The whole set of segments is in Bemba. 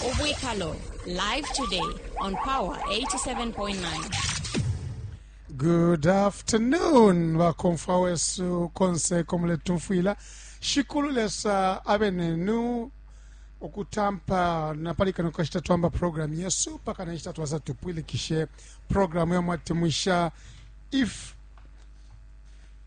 Ubwikalo live today on Power 87.9. Good afternoon bakomfwa wesu konse komuletumfwila shikulu lesa abe nenu okutampa napali kano kashita twamba programu yesu paka nashita twaza tupwilikishe programu yamwatemwisha if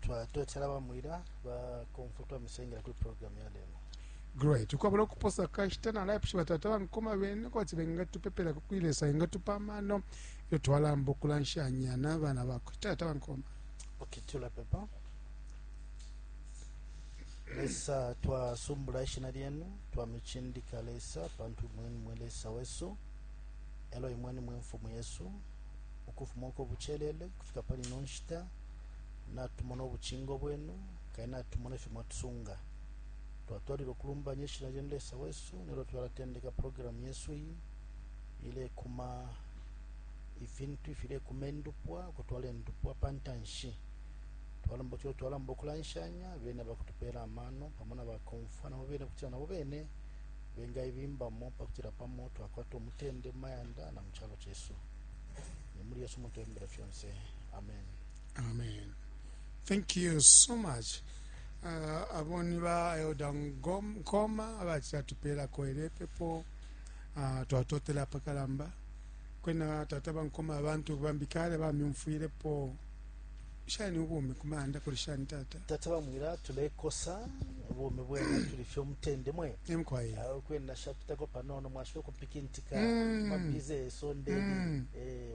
twatotela bamwila bakomfo twamisengela kuli programu ya lelo great ukwabula okuposa kashita nalaipusha batata bankoma bene kwati bengatupepela kukwilesa engatupa amano iyo twalamba okulanshanya n'abaana bakwe tata bankoma okay tulapepa lesa twasumbula ishina lyenu twamicindika lesa pantu imweni mwe lesa wesu elo imweni mwe mfumu yesu ukufuma uko bucelele kufika pali ino nshita natumona ubucingo bwenu kandi natumona ifyo mwatusunga twatwalila ukulumbanya ishina lyenu lesa wesu nelyo twalatendeka programu yesu iyi ilekuma ifintu ifilekuma endupwa ukutwala endupwa pa ntanshi twalomba tuyo twalomba ukulanshanya bene bakutupeela amano pamo na bakomfwa nabo bene kutila nabo bene bengaibimbamo pakutila pamo twakwata omutende mu mayanda na mu calo cesu ni muli yesu mutembele fyonse amen amen thank you so much uh, abo ni ba elda Ngom- nkoma abacila tupeelako ele pepo uh, twatotela apakalamba kwena tata bankoma abantu bambi kale bamyumfwilepo shani ubumi kumanda kuli shani tata tata bamwira tulekosa bumi bwena tuli fye omutende mwe emkwaye Ah, kwena shapitako panono mwashobola okupikintika Mm. mabize esondeni Mm. Eh,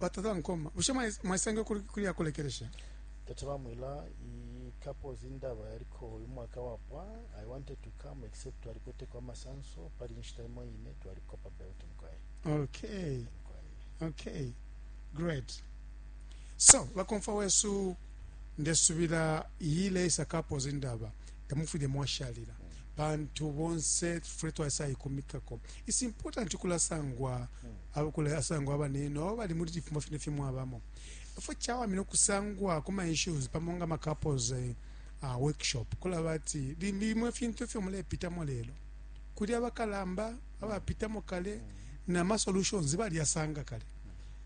batata nkoma bushe mwais- mwaisangile kuli kuli ya kulekelesha tata bamwila i couples indaba yaliko uyu mwaka wapwa i wanted to come except twalikweteko amasanso pali inshita imo ine twaliko pa belt mukwaye okay mukwaye okay great so bakomfa wesu ndesubila yile isakapo zindaba tamufwile mwashalila pantu bonse fule twaisayikumikako its important kulasangwa Abakula asangwa abane no bali muli cifumo fine fye mwabamo. Efo cawamina ukusangwa ku ma issues pamo nga ma couples eh, uh, workshop kulaba ati limbi imwe fintu ifyo mulepitamo lelo kuli abakalamba abapitamo kale na ma solutions baliyasanga kale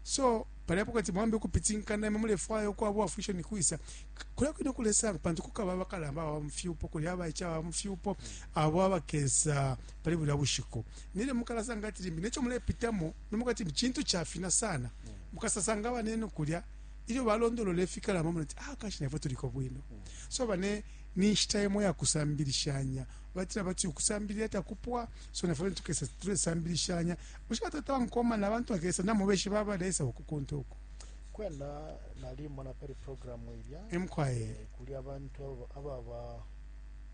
so pali apo kati mwambe ukupitinkana imwe mulefwaya ukwaba uwafwisha ni kwisa K- kulya kwine kulesanga pantu kukaba abakalamba aba mufyupo kuli abaica aba mufyupo abo abakesa pali bulya bushiku nelyo mukalasanga ati limbi neco mulepitamo nomukati cintu cafina sana mm. mukasasanga banenu kulya ilyo balondolola ifikalamba muna ti ah kashi nafwe tuliko bwino mm. so bane ni nshita imo ya kusambilishanya batira bati ukusambilira takupwa so nafwe tukesa tulesambilishanya ushika tata nkoma na bantu akesa namubeshi baba lesa ukukunta uko kwena nalimona peri programu ilya emkwaye eh, kuli abantu ababa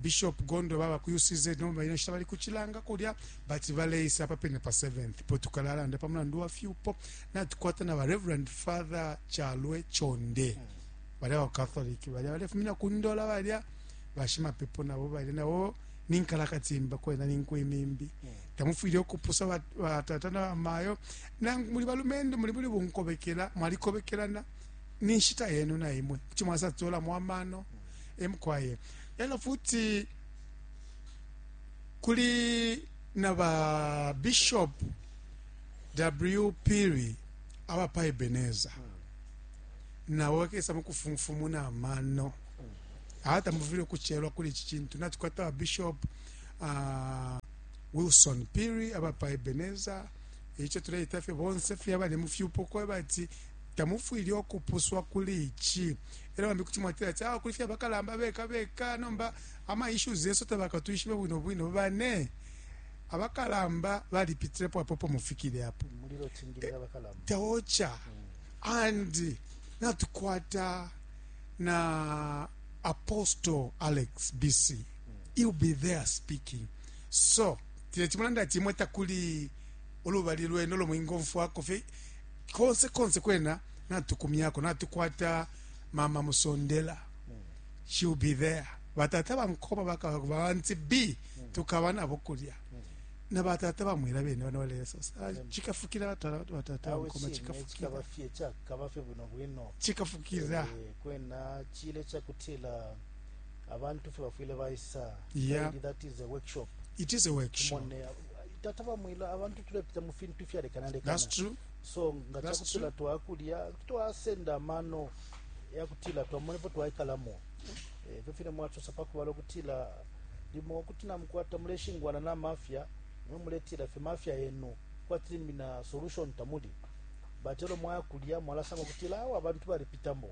Bishop Gondwe baba ku UCZ nomba ino nshita bali ku Chilanga kulya but baleisa apa pene pa 7th po tukalalanda pa mulandu wa fyupo natukwata na ba Reverend Father Chalwe Chonde balya ba Catholic balya balefumina ku Ndola balya bashimapepo nabo balya nabo ninkalakatimba kwena ninkwimimbi tamufwile okupusa bat- batata na bamayo nangu muli balumendo muli buli bunkobekela mwalikobekelana ni nshita yenu na imwe kuti mwasatolamo amano e mukwai elo futi kuli na ba bishop w piri aba pa ebeneza nabo bakesa mukufumfumuna amano hata muvile ukuchelwa kuli ichi chintu natukwata ba bishop uh, wilson piri aba pa ebeneza icho tuleita fye bonse fye abali mu fyupo kwebati tamufwile okupuswa kuli ichi Era bambi kuti mwatila ati ah, kuli fye abakalamba beka beka nomba ama issues yesu tabakatwishibe bwino bwino bane abakalamba balipitilepo apo po mufikile apo taocha and natukwata na apostle alex bc he'll be there speaking so tile chimulanda ati imwe takuli olubali lwenu olwo mwingomfwako fye konse konse kwena natukumyako natukwata mama musondela she'll be there batata bankoma bakaba banti b tukaba nabo kulya na batata bamwira bene bana balesosa ah, chikafukira batala batu batata bankoma chikafukira kabafye cha kabafye bwino bwino chikafukira Eh, kwena chile chakutila abantu fe bafwile baisa Yeah. Maybe that is a workshop it is a workshop Mone, tata bamwila abantu tulepita mu fintu fyalekanalekana that's true so nga That's cakutila true. twakulya kuti twasenda amano yakutila twamone po twaikalamo Eh, ifyo fine mwacosa pakubala ukutila limo kuti namukwata muleshingwana na mafya mwe muletila fye mafya yenu kwati limbi na solution tamuli but elo mwaya kulya mwalasanga ukutila awe abantu balipitamo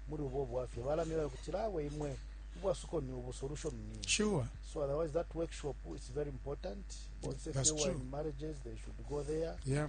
muli ubo bwafya balamila ukutila awe imwe ubwasuko ni ubu solution ni iyi." Sure. So otherwise, that workshop is very important. Once That's if they were true. in marriages, they should go there. Yeah.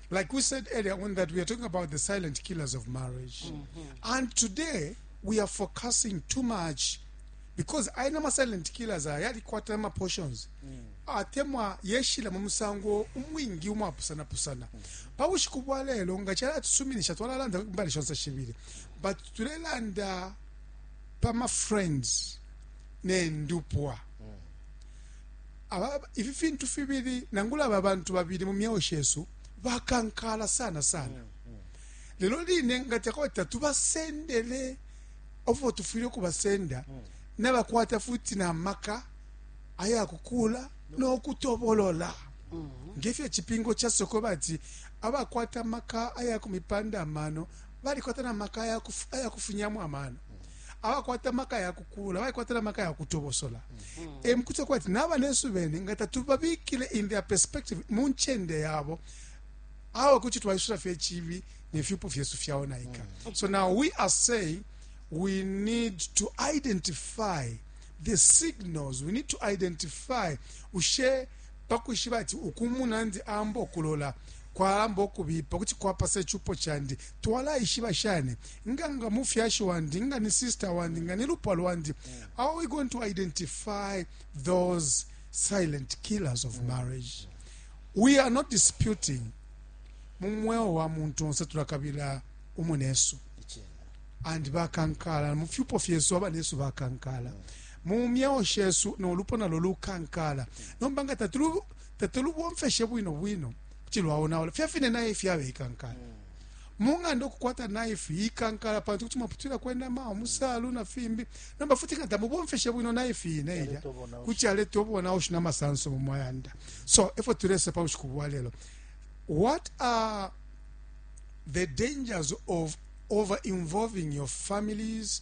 Like we said earlier on that we are talking about the silent killers of marriage. Mm -hmm. And today we are focusing too much because I know my silent killers are yali kwata ma portions. Mm. Atemwa yeshila mu musango umwingi umwapusana pusana. Mm. Pa bushiku bwa lelo nga chala tusuminisha twalalanda mbali shonse shibiri. But tulelanda pa ma friends ne ndupwa. Mm. Aba, ifi fintu fibili, nangula aba bantu babili mu myeo shesu bakankala sana sana, lelo line ngati akwata tubasendele ofo tufwile ukubasenda nabakwata futi na maka aya kukula no kutobolola ngefyo icipingo casoko bati abakwata maka aya kumipanda amano balikwata na maka aya kufunyamo amano abakwata amaka ya kukulula baikwata na maka ya kutobosola emukutwa eh, kwati n'abanesu bene nga tatubabikile in their perspective mu ncende yabo awa kuti twaisula fye chibi ne fyupo fyesu fyaonaika mm. so now we are saying we need to identify the signals we need to identify ushe pa kwishiba ati uku umunandi aamba ukulola kwalamba ukubipa kuti kwapasa icupo candi? Twalaishiba shani nga nga mufyashi wandi, nga ni sister wandi, nga ni lupwa lwandi? How are we going to identify those silent killers of marriage? We are not disputing mu mweo wa muntu onse tulakabila umunesu and bakankala mu fyupo fyesu abanesu bakankala mm. mu myeo shesu no lupo nalo lukankala nomba nga tatulu tatulubomfeshe bwino bwino kuti lwaonaula fya fine naye ifi yabe ikankala mung'anda okukwata naifu yikankala pantu kuti mwaputwila kwenama omusalu na fimbi nomba futi nga tamubomfeshe bwino naifu yine ilya kuti aleta obonaushi na masanso mu mayanda so efo tulese pa bushiku bwa lelo what are the dangers of over involving your families